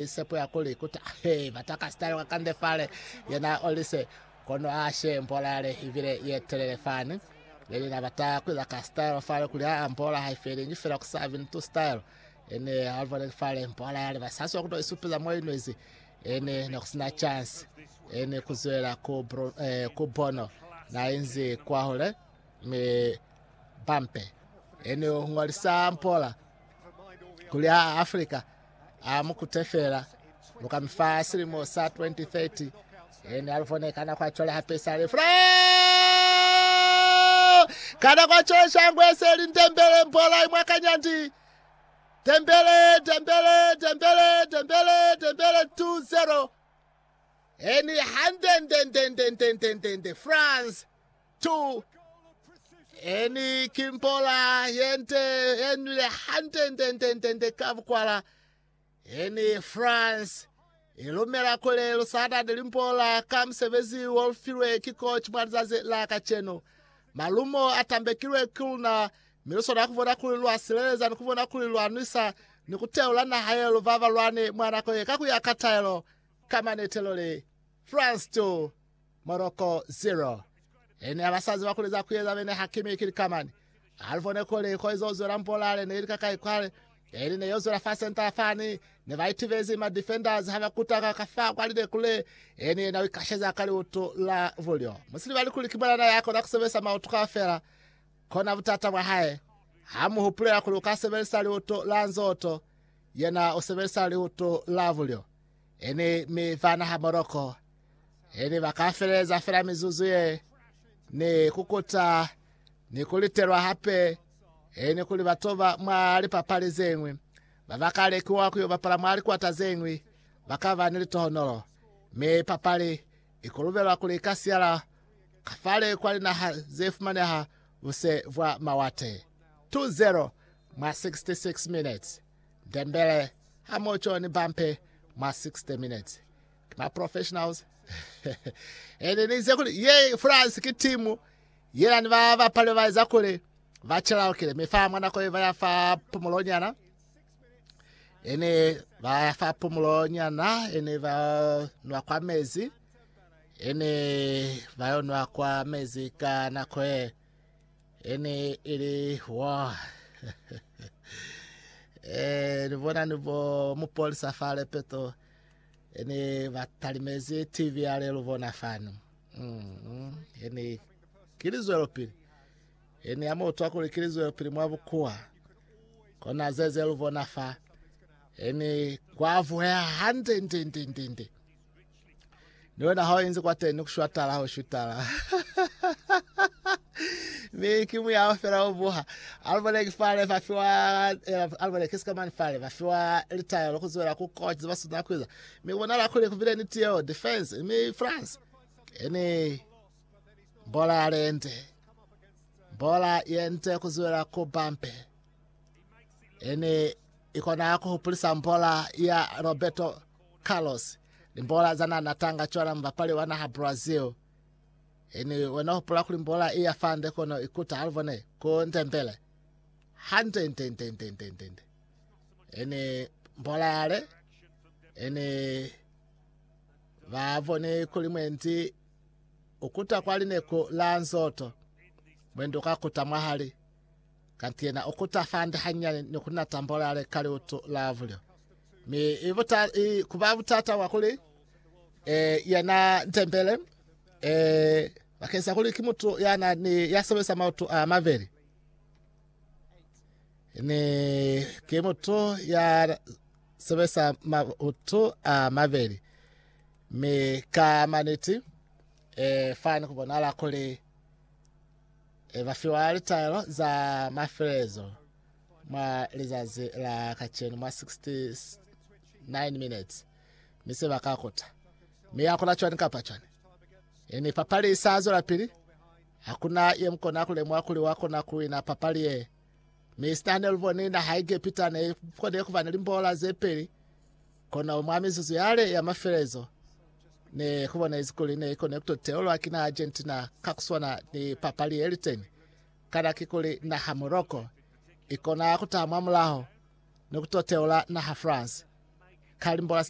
Ki sepo ya kuli ku ta ba taka sitalo ka kande fale. Yena o li se, Kono a she mbola yale i bile ye telele fani. Leli na bata ku iza ka sitalo fale kuli aa mbola ha i felingi fela ku sa bini tu sitalo. Ene a boneli fale mbola yale ba sa swa ku to i supiza mo i nwezi. Ene ne ku sina chansi. Ene ku zwela ku, Bru, eh, ku Bono na inzi kwahule, mi Bampe. Ene o ngolisa mbola kuli aa Afrika A mu kute fela. Lu ka mi fa silimo sa 2030. Ene a lu fone kana kwa cwale hape sa le fula. Kana kwa cwale shangu ese li ndembele mbola imwa kanyandi. Dembele, Dembele, Dembele, Dembele, Dembele 2-0. Eni hande ndende ndende ndende France. 2, Eni ki mpola ye nte ye nwile hante nte nte nte nte ka bukwala. Eni France i lumela kuli lu sa tati limpola ka musebezi wo lu filwe ki koci mwa lizazi la kacenu. Malumo a tambekilwe ki luna mi lu swanela ku bona kuli lwa sileleza ni ku bona kuli lwa nwisa ni ku teula naha ye lu babalwani mwa nako ye ka ku ya ka taelo. Ka manetelo li. France 2, Morocco 0. Ene ha ba sa ziba kuli za ku eza, bene Hakimi ki likamani. Ha li bone kuli ko izo zwela mbolale ne li ka kai kwale, eli ne yo zwela fa centre fani, ne ba itibezi ma defenders ha ba kutaka ka fa kwa lide kule, eni yena u ikasheza ka liutu la bulyo. Mu si libali kuli ki mwanana ya kona ku sebelisa mautu kaufela, kona butata bwa hae. Ha mu hupulela kuli u ka sebelisa liutu la nzoto, yena u sebelisa liutu la bulyo. Ene mi fana ha Morocco. Ene ba ka feleza fela mizuzu ye ni kukuta ni kulitelwa hape ene kuli ba toba mwa lipapali zeñwi. Ba ba ka lekiwa ku yo bapala mwa likwata zeñwi ba ka ba ni litohonolo. Mi papali i kolubelwa kuli ika siyala kafale kwa linaha ze fumaneha buse bwa mawate. 2-0 mwa 66 minutes. Ndembele, ha mo John Bampe mwa 60 Minutes. Ki ma professionals. Ene ni ize kuli ye France ki timu yena ni ba bapali ba eza kuli ba chelaukile mi fa mwa nako ye ba ya fa pumulo nyana. Ene ba ya fa pumulo nyana ene ba nwa kwa mezi ene ba yo nwa kwa mezi ka nako ye E ne e li wa. e, ni bona ni bo mupolisa fa lepeto. E ne ba talimezi TV ya le lu bona fanu. Mm, e ne ki lizwelo pili. E ne ya mo utwa kuli ki lizwelo pili mwa bukuwa. Kona zeze lu bona fa. E ne kwa vuheha hande nde nde nde nde. ni wena ha inzi kwa teni kushwatala ho shutala mi ki muyao fela o buha alibone ki fale fa fiwa alibone ke sikamani fale fa fiwa litaya lo kuzuela ku coach ba suna kuiza mi bona la kule kubile ni tiyo defense mi France ene bola lente bola yente kuzuela ku bampe ene ikona ku hupulisa bola ya Roberto Carlos, Limbola za nana tanga cwana mubapali wa naha Brazil. Ini wena hupula kuli mbola iya fande kono ikuta halubone ku Ndembele? Hande nde nde nde nde nde nde. Ini mbola yale ini vavone kuli mwendi ukuta kwa lineku la nzoto mwendi ukakuta mwahali Kanti yena u kuta fande hanyani ni ku na tambolale ka liutu la vulyo. Mi i buta, i kuba butata bwa kuli e, yena ntembele e, bakeng sa kuli ki mutu ya na ni ya sebelisa mautu a mabeli ni ki mutu ya sebelisa mautu a mabeli mi ka maniti e, fani ku bonala kuli e ba fiwa litaelo za mafelelezo mwa lizazi la kacenu mwa 69 minutes, mi se ba ka kuta. Mi ya kula cwani kapa cwani. E ni papali i sa zwela pili, hakuna ye mu kona ku lemuha kuli wa kona ku wina papali ye. Mi sina ne lu boni naha ya Egepita ne i kone ku ba ni limbola ze peli, Kono mwa mizuzu yale ya mafelezo, ne ku bonezi kuli ne i koni ku to teulwa ki naha Argentina ka ku swana ni papali ye liteni. Kana kikuli naha Morocco i kona ku taha mwa mulaho ni ku to teula naha France? Kalimbolas.